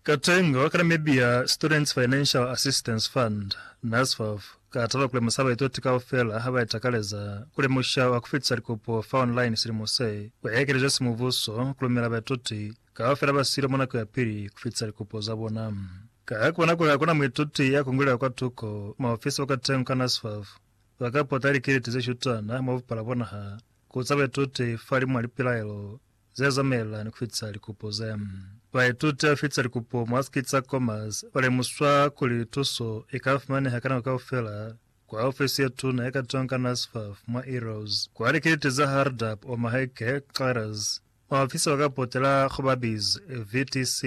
Katenga wa ka Namibia Students Financial Assistance Fund, NASFAF, ka taba kulemusa baituti kaufela haba itakaleza kulemusha wa kufitisa likopo fa online silimo se, kwa ekelezwa simubuso kulumela baituti kaufela ba siilo mwa nako ya pili kufitisa likopo za bona. Ka kubona kuli hakuna muituti ya kungulela kwatuko, maofisa ba katengo ka NASFAF ba ka pota likiliti ze shutana mwa bupala bwa naha ku uza baituti fa limwa lipilaelo, ze zamelani ku fitisa likupo ze baituti ba fitisa likupo mwa siki tsa Commerce ba lemuswa kuli tuso i ka fumaneha ka nako kaufela kwa ofisi ye tuna ye ka tonga NASFAF mwa Eros kwa likiliti za Hardup, Omaheke, Xeres. Maofisi ba ka potela ku ba biz, VTC,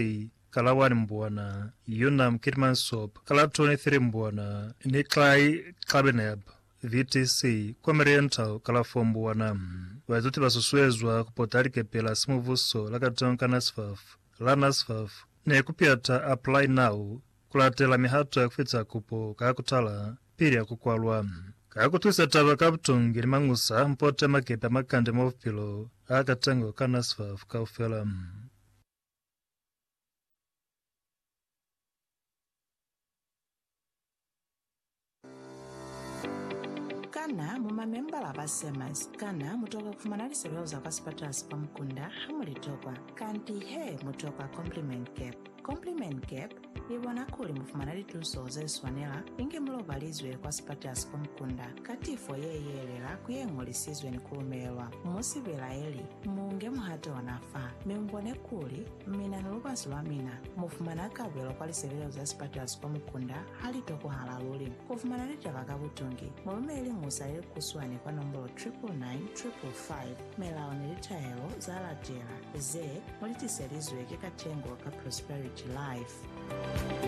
ka la 1 Mbwana, Unam, Keetmanshoop, ka la 23 Mbwana, ni Xai, Xabineb, VTC, Comeriental Kalafong Mbuwana. Baituti ba susuezwa ku pota likepe la simubuso la Katonka NSFAF, la NSFAF, ni ku piata Apply Now ku latela mihato ya ku fita kupo ka ku tala pili ya ku kwalwa. Ka ku twisa taba ka butungi ni mañusa, mu pote makepe a makande mwa bupilo a katengo ka NSFAF kaufela. Kana mu mamembala ba SEMAS? Kana mu tokwa ku fumana lisebeo za kwa sipatala si kwa mukunda ha mu li tokwa? Kanti he, mu tokwa Compliment Cap. Compliment Cap i bona kuli mu fumana lituso ze swanela inge mu lobalizwe kwa sipatala si kwa mukunda ka tifo ye yelela ku ye ñolisizwe ni ku lumelelwa. Mu si belaeli, mu nge muhato ona fa, mi mu bone kuli Mina ni lubasi lwa mina mu fumana kabelo kwa lisebelezo za sipatulaso kwa mukunda ha li tokohala luli. Ku fumana litaba ka butungi, mu lumele liñusa le likuswani kwa nombolo 999555. Melao ni litahelo za latela ze mu li tiselizwe ki Katengo ka Prosperity Life.